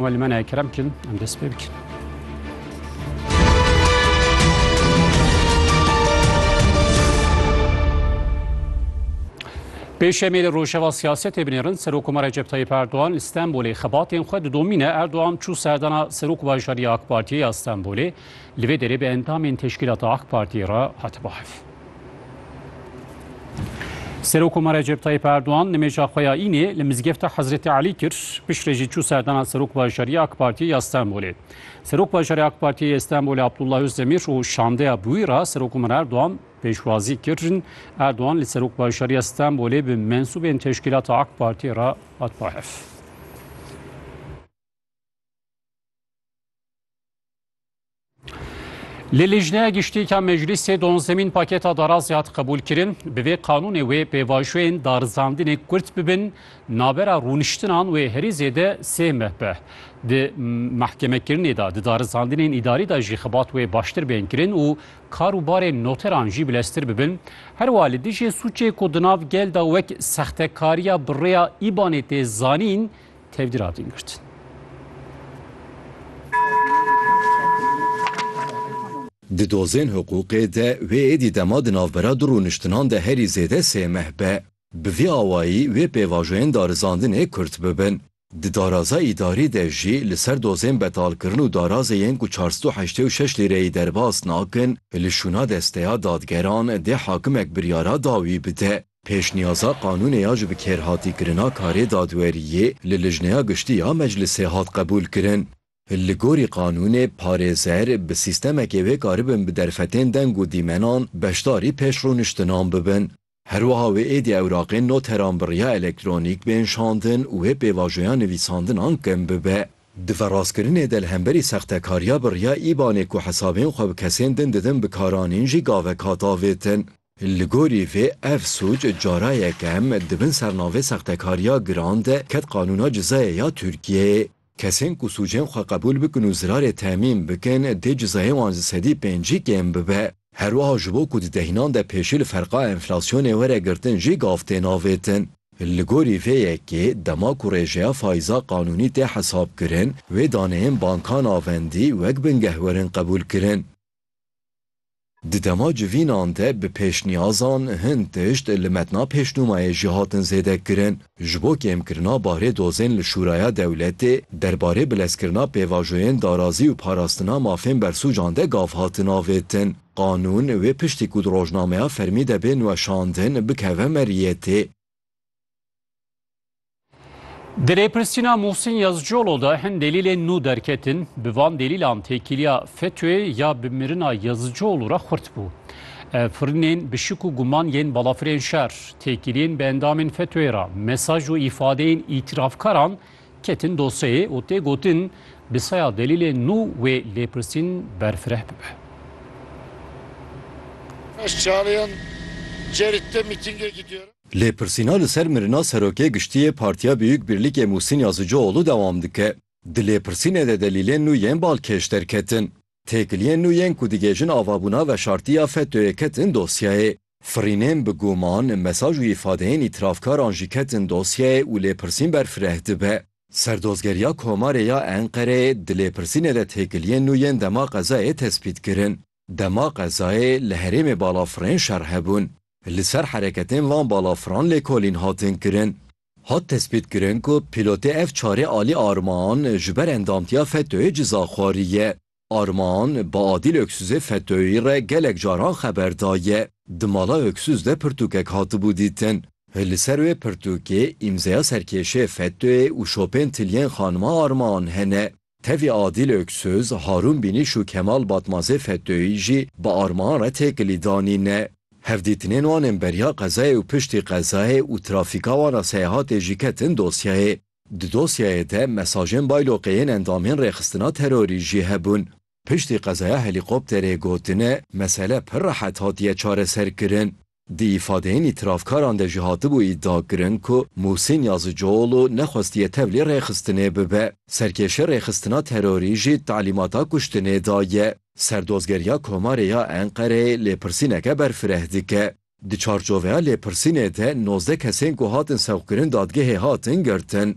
Wan li me nayê kerem bikin, em dest pê bikin. Pêşemê li rojeva siyasetê binêrin Serokkomar Recep Tayyip Erdogan li Stenbolê xebatên xwe didomîne Erdogan çû serdana Serok Bajarî AK Partiyê ya Stenbolê li vê derê bi endamên teşkîlata AK Partiyê re hate bahev. Serokkomar Recep Tayyip Erdogan nimêja xwe ya înê li mizgefta Hezretê Elî kir, piştre jî çû serdana Serok Bajarî ya AK Partiyê ya Stenbolê. Serok Bajarê AK Partiyê yê Stenbolê Abdullah Ozdemir û şandeya bi wî re Serokkomar Erdogan pêşwazî kirin. Erdogan li Serok Bajarî ya Stenbolê bi mensûbên teşkîlata AK Partiyê re hat bahev. Li Lijneya Giştîka Meclîsê donzemîn paketa darazê hat qebûlkirin. Bi vê qanûnê wê pêvajoyên darizandinê kurt bibin, navbera rûniştinan wê herî zêde sê meh be. Di mehkemekirinê de, di darizandinên îdarî de jî xebat wê baştir bên kirin û kar û barên noteran jî bileztir bibin. Herwa li dijî sûcê ku di nav gel de wek sextekariya bi rêya îbanê tê zanîn, tevgîr hatin girtin. Di dozên hiqûqê de wê êdî dema di navbera du rûniştinan de herî zêde sê meh be. Bi vî awayî wê pêvajoyên darizandinê kurt bibin. Di daraza îdarî de jî li ser dozên betalkirin û darazê yên ku çar sed û heştê û şeş lîreyî derbas nakin, li şûna desteya dadgeran dê hakimek biryara dawî bide. Pêşniyaza qanûnê ya ji bikerhatîkirina karê dadweriyê li Lijneya Giştî ya Meclisê hat qebûlkirin. Li gorî qanûnê, parêzer bi sîstemekê wê karibin bi derfetên deng û dîmenan beşdarî pêşrûniştinan bibin. Her wiha wê êdî ewraqên noteran bi riya elektronîk bên şandin û wê pêvajoya nivîsandinan kim bibe. Di ve rastkirinê de li hemberî sextekariya bi riya îbanê ku hesabên xwe bi kesên din didin bikaranîn jî gavek hat avêtin. Li gorî vê ev sûc carayek em di bin sernavê sextekariya giran de ket qanûna cizayê ya Tirkiyeyê. Kesên ku sûcên xwe qebûl bikin û zirarê temîn bikin dê cizayê wan ji sedî pêncî kêm bibe. Her wiha ji bo ku di dehinan de pêşî li ferqa enflasyonê were girtin jî gav tên avêtin. Li gorî vê yekê dema ku rêjeya faiza qanûnî tê hesabkirin, wê daneyên bankan a vendî wek bingeh werin qebûlkirin. Di dema civînan de bi pêşniyazan hin tişt li metna pêşnûmayê jî hatin zêde kirin. Ji bo kêmkirina barê dozên li Şûraya Dewletê derbarê bilezkirina pêvajoyên darazî û parastina mafên bersûcan de gav hatin avêtin. Qanûn wê piştî ku di rojnameya fermî de bên weşandin bikeve meriyetê. Di rêpirsîna Muhsin Yazıcıoğlu de hin delîlên nû derketin, bi van delîlan têkiliya FETÖ'yê ya bi mirina Yazıcıoğlu re xurt bû. Firinên bi şik û guman yên balafirên şer, têkiliyên bi endamên FETÖ'yê re, mesaj û îfadeyên îtîrafkaran ketin dosyeyê û tê gotin bi seya delîlê nû wê lêpirsîn berfireh bibe. Lêpirsîna li ser mirina Serokê Giştî yê Partiya Biyûk Bîrlîkê Mûhsîn Yazicioğlu dewam dike. Di lêpirsînê de delîlên nû yên balkêş derketin. Têkiliyên nû yên ku digihêjin avabûna veşartiya FETÖ'yê ketin dosyayê. Firînên bi guman, mesaj û îfadeyên îtîrafkaran jî ketin dosyayê û lêpirsîn ber fireh dibe. Serdozgeriya Komarê ya Enqereyê di lêpirsînê de têkiliyên nû yên dema qezayê tespît kirin. Dema qezayê li herêmê balafirên şer hebûn. Li ser hereketên van balafiran lêkolîn hatin kirin. Hat tespîtkirin ku pîlotê ev çarê alî Armaan ji ber endamtiya FETÖ'yê ciza xwariye. Armaan bi Adîl Öksüzê FETÖ'yî re gelek caran xeber daye. Di mala Öksüz de pirtûkek hatibû dîtin. Li ser wê pirtûkê îmzeya serkêşê FETÖ'yê û şopên tiliyên xanima Armaan hene. Tevî Adîl Oksöz, Harûn Bînîş û Kemal Batmazê Fettoyî jî bi armahan re têkilî danî ne. Hevdîtinên wan ên beriya qezayê û piştî qezayê û trafîka wan a seyahatê jî ketin dosyayê. Di dosyayê de mesajên bayloqê yên endamên rêxistina terorî jî hebûn. Piştî qezaya helîkopterê gotine mesele pir rehet hatiye çareserkirin. Di îfadeyên îtîrafkaran de jî hatibû îdiakirin ku Muhsîn Yazıcıoğlu nexwestiye tevlî rêxistinê bibe. Serkêşê rêxistina terorî jî talîmata kuştinê daye. Serdozgeriya Komarê ya Enqereyê lêpirsîneke berfireh dike. Di çarçoveya lêpirsînê de nozdeh kesên ku hatin sewqkirin dadgehê hatin girtin.